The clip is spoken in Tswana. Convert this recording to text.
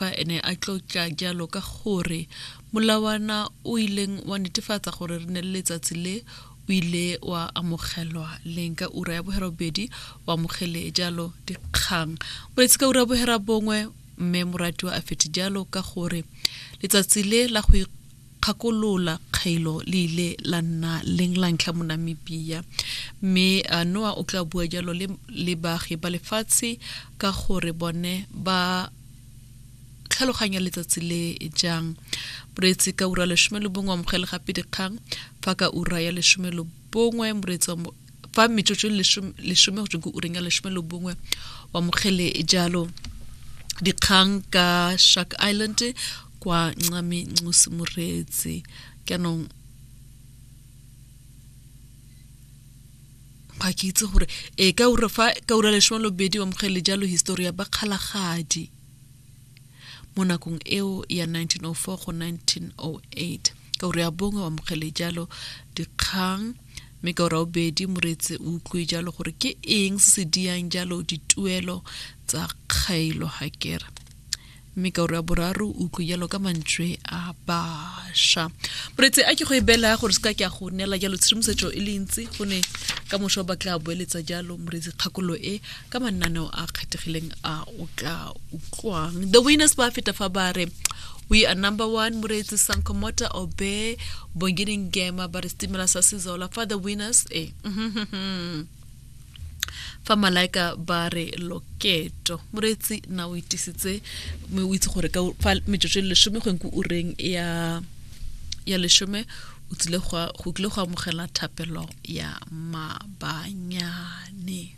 Fa ene a tlotla jalo ka gore molawana o ileng wa netefatsa gore re ne le letsatsi le o ile wa amogelwa leng ka ura ya bogerabobedi o amogele jalo dikgang boletsi ka ura ya bogerabongwe mme moratiwa a fete jalo ka gore letsatsi le la go kgakolola kgaelo le ile la nna leng la ntlha mo Namibia, mme Noa o tla bua jalo le, le baagi ba lefatshe ka gore bone ba tlhaloganya letsatsi le jang. Moreetsi ka ura lesome le bongwe amogele gape dikgang fa ka ura ya lesome le bongwe moreetsi wa fa metsotso lesome go tswe ke ureng ya lesome le bongwe wa mokgele jalo dikgang ka shark island kwa ncame ncosi moreetse jaanong ga ke itse gore e ka ura fa ka ura lesome lobedi wa mokgele jalo histori ya bakgalagadi mo nakong eo ya 1904 go 1908. Ka ura ya bongwe o amogele jalo dikgang mme ka ura obedi moreetse o utlwe jalo gore ke eng se se diyang jalo dituelo tsa kgaelo hakera mme ka ura boraro utlwe jalo ka mantswe a basha moretse a ke go e bela gore se ka ke a go neela jalo tshedimosetso e le ntsi go ne ka moso ba tla boeletsa jalo moretse kgakolo e ka mananeo a kgethegileng a o tla utlwang the winners ba feta fa ba re we are number one moreetsi sankomota obe bongini ngema ba re setimela sa sezola fa the winners e fa malaika ba re loketo moreetsi na o itisitse mme o itse gore ka fa metsotso e lesome go nku ureng ya ya lesome o tsile go kile go amogela thapelo ya mabanyane